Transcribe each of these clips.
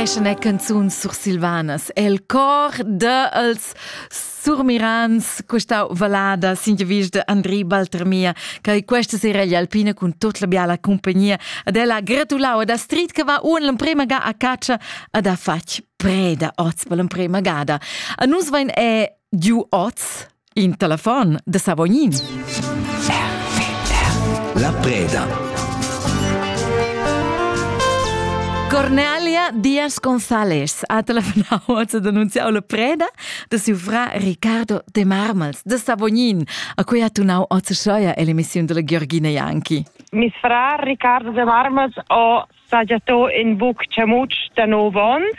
Questa è canzun sursilvanas. El cor dels surmirans questa valada sin vis de Andri Baltermia, che questa sera gli alpina con tut la biala compagnia ad ella gratulau ad Astrid che va un l'emprema ga a caccia ad ha fatg preda oz per l'emprema gada. A nus vain è giu oz In telefon da Savognin. La preda. Cornelia Diaz González ha telefonau oz ad annunziau la preda da siu fra Ricardo de Marmals de Savognin, a cui ha tunau oz Schoia ell'emissiun della Georgina Janki. Mes fra Ricardo de Marmals ha sagiato in buc chamutsch da nov onns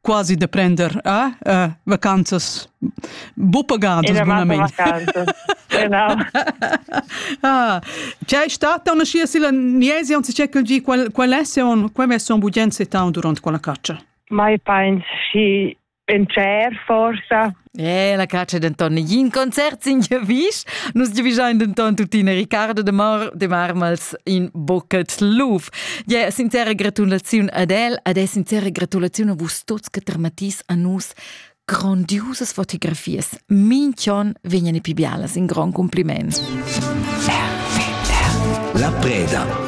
quasi da prender eh, eh, vacanzas buppagadas bunament. genau. ah, c'è stata una scia si la niesi on si c'è quel gi qual qual è se on qual è son bugen se town durant quella caccia? Mai pensi in cer forsa Eh, la caccia denton negin concert sin giavisch. Nus giavischein denton tuttina Riccardo de, Mar de Marmals in Bucket Luf. Ja, sincera gratulaziun ad el, ad el sincera gratulaziun a vus tots che termatis a nus grandiosas fotografias. Minchion vegnan pi bialas, in gran compliment. La preda.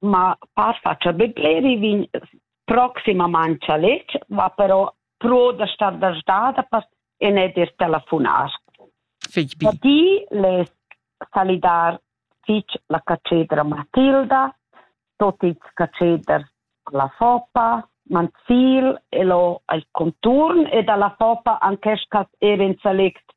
Ma far fatscha be bler, i vegn proximamaing chaletg, va però pro da star da sdada per e ne d'ir telefonar. Fich bi. Da di less salidar fich la catschedra Matilda, tot ils catscheders la Foppa, Manzil e lo al conturn e da la Foppa anche sch'as eir in salect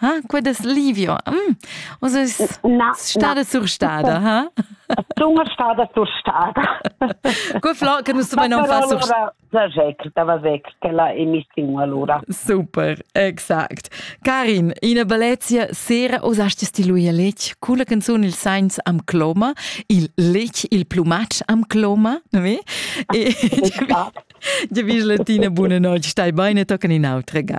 Ah, qued es livio. Mm. Oz es na, stada na. surstada, ha? Sunga stada surstada. Cu Flo, che nu stuvain non far surstada. Zajec, da vazec, che la emissiun allora. Super, exact. Karin, ina bellezia sera osasti stiluia lec, culla canzun il sainz am cloma, il lec, il plumatsch am cloma, oui? E, ja, vis latina, buonanotte, stai bene, tocan in autre ga.